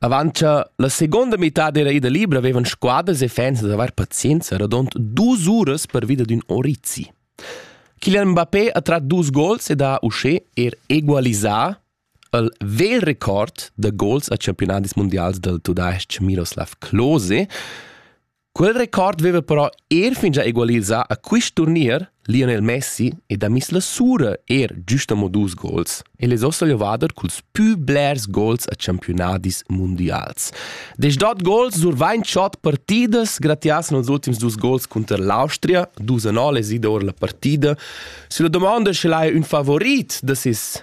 Avant cha la seguonda mitad dera ida libra vevan squadas e fans da avair pazienza radond dus uras pervi d'ün orizi. Kylian Mbappé ha trat dus gols ed ha uschè er egualisà il vegl record da gols a campiunadis mundials dal tudais-ch Miroslav Klose, Quel record veva però er fingià egualisà a quist turnier Lionel Messi ed ha miss la sura er giust amo dus gols. El es ossa levader culs pü blers gols a champiunadis mundials. Desdot gols survain chod partidas gratias nos ultims dus gols cunter l'Austria, dus a nol es ida our la partida. Sülla domanda sch'el haja ün favorit da ses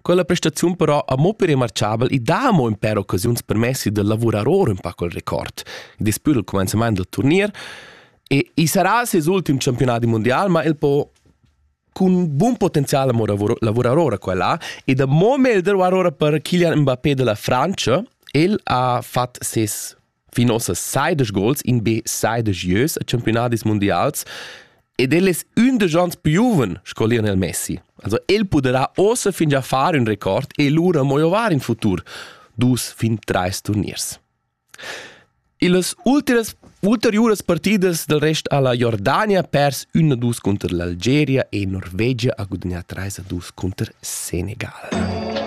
Quella prestaziun però ha mo per remarchabel e dà mo in per occasiuns permessi da lavurar or un pa col record, despü dal comenzament del turnier, e i sarà ses ultim campionati mundial, ma el po cun bun potenzial mo lavurar ora quella e da mo meglder war ora per Kylian Mbappé della Francia, el ha fat ses fin ossa seidesch gols in be seidesch ieus a campiunadis mundials ed el es ün da gens piuven sco Lionel Messi. Also el puderà ossa fin già far ün record e lura mo ovar in futur dus fin trais turniers. Illas ulteriores, ulteriuras partidas del rest alla Jordania pers 1-2 contro l'Algeria e Norvegia a gudagnà 3-2 contro Senegal.